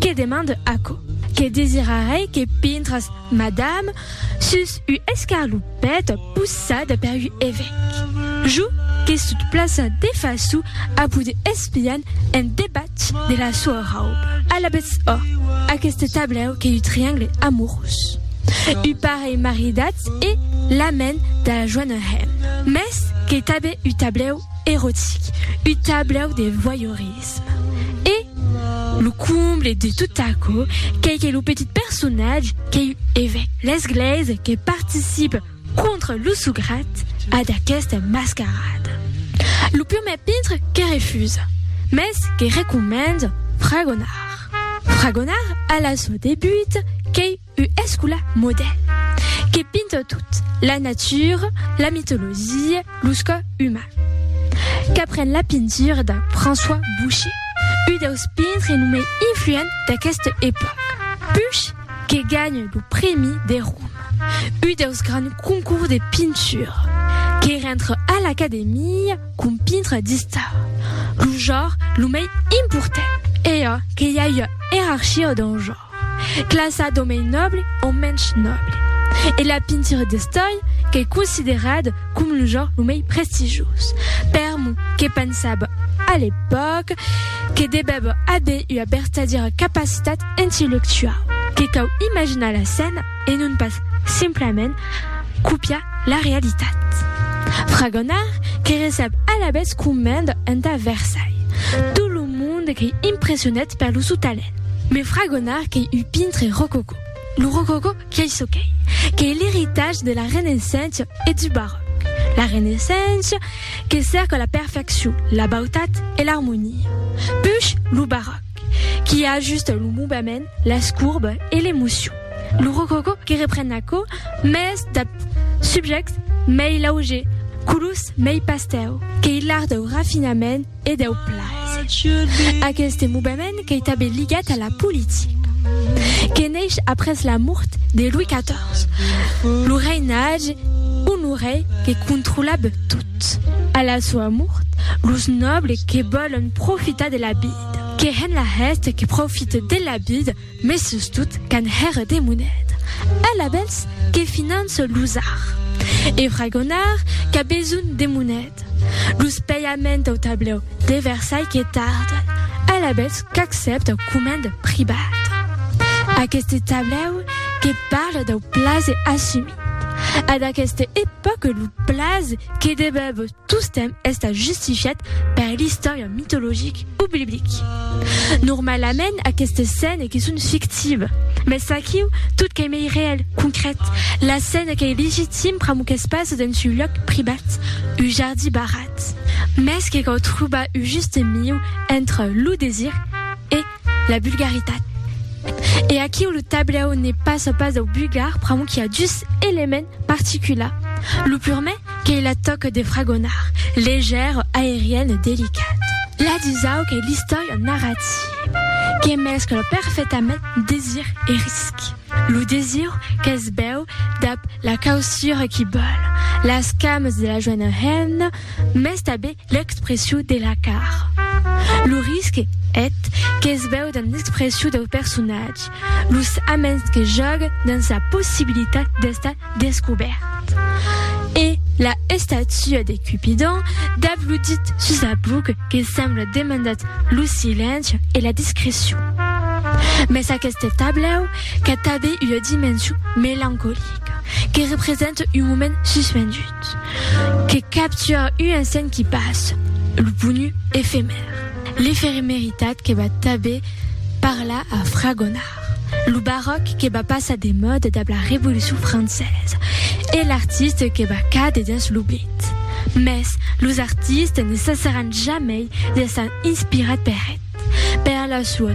Que demande aquò? Que desirarei que pintras, madame, sus u escarlopet possat per u evèc. Jo que sot plaça de façu a vos de espian en debatz de la soa rauba. Alabetz ò, aqueste tablèu qu'ei u triangle amorós. U parelh maridatz e la men da la joana hèm. Mès qu'ei tanben u tablèu erotic, u tablèu de voyeurisme. Ets. E lo comble de tot aquò qu'ei que lo petit personatge qu'ei un evèc de l'Esglèisa que participe contra lo sograt a d'aquesta mascarada. Lo prumèr pintre que refusa, mès que recomenda fragonar. Fragonar a la sua debuta qu'ei U escula modè que pinta tot, la natura, la mitologia, los cò uman. Qu'apren la pintura de François Boucher, u deus pintre lo mei influent d'aqueste epòca. Puch que ganha lo prèmi de Roma, u deus grands concours de pintura, que rentre a l'Academia com pintre d'istara, lo jòr lo mei important. E a que i a ua erarchia dau jòr. Classa d'o mei nòble o mensh nòble. E la pintura d'estòi qu'ei considerada com lo genre lo mei prestigioz. Per mo, que pensava a l'epòca que devèva aver ua vertadièra capacitat intellectuau, que cau imaginar la scèna e non pas simplament copiar la realitat. Fragonard que recep alavetz comenda entà Versailles tot lo monde qu'ei impressionat per lo sou talent. Me fragonar qu'ei un pintre rococò. Lo rococò qu'ei çò qu'ei, qu'ei l'eritatge de la Renaissença e du Baròc. La Renaissença que cèrca la perfeccion, la bautat e l'armonia. Push lo Baròc qui ajusta lo movement, las courbes e l'emocion. Lo rococò que repren aquò mès dab subjèctes mei laugers, colors mei pastèu, qu'ei l'art dau rafinament, e deu plaser. Aqueste movement qu'ei tanben ligat a la politica, que neish après la mort de Louis XIV, lo reinatge Honoré que controlab tot. A la soa mort, los nòbles que vòlon profitar de la vida, que hèn la hèste que profite de la vida, Mes sustot qu'an hèr de moneda. Al abèls que finance los ar. E fragonar qu'a besonh de moneda. Los paiament au tablèu de Versailh que tarden. Al abèls qu'accèpta comand privat. Aqueste tablèu que parle dau plaze assumit. A d'aqueste epòque lo plaze que debèb. Tostemp estant justifiat per l'istòria mitologic o biblic. Normalament aquestes scènes que son fictives, mès aquiu tot qu'ei mei reèl, concrèt, la scèna qu'ei legitim pr'amor qu'es pas dens un lòc privat, un jardí barrat. Mès que cau trobar un juste miu entre lo desir e. la bulgaritat. E aquiu lo tablèu ne pas au pas dau bulgar pr'amor qu'i a dus elements particulars. Lo purmè qu'ei la tòca de fragonar, leger, aerienne, delicat. La dusau qu'ei l'istòria narrativa, que mescla perfetament desir e risc. Lo desir qu'es bèu dab la causura qu'i bòl, las cames de la joena hemna, mès tabé L'expressiu de la car. Lo risque eth qu'es veu dens l'expressiu deu personatge, los aments que jògue dens la possibilitat d'estar descobèrt. E la estatua de Cupidon dab lo dit sus la buc que sembla demandat lo silenci e la discrecion. Mès aqueste tablèu qu'a tanben ua dimension melancolica que represente un moment suspendut. Que capture un insent qui passe, lo ponu efemèr, l'efemeritat que va tanben parlar a fragonar, lo baròc que va passar de mòda dab la Revolucion Francesa e l'artiste que va càder dens l'oblit. Mès los artistes ne cessaràn jamei d'èsser inspirats per eth, per la sua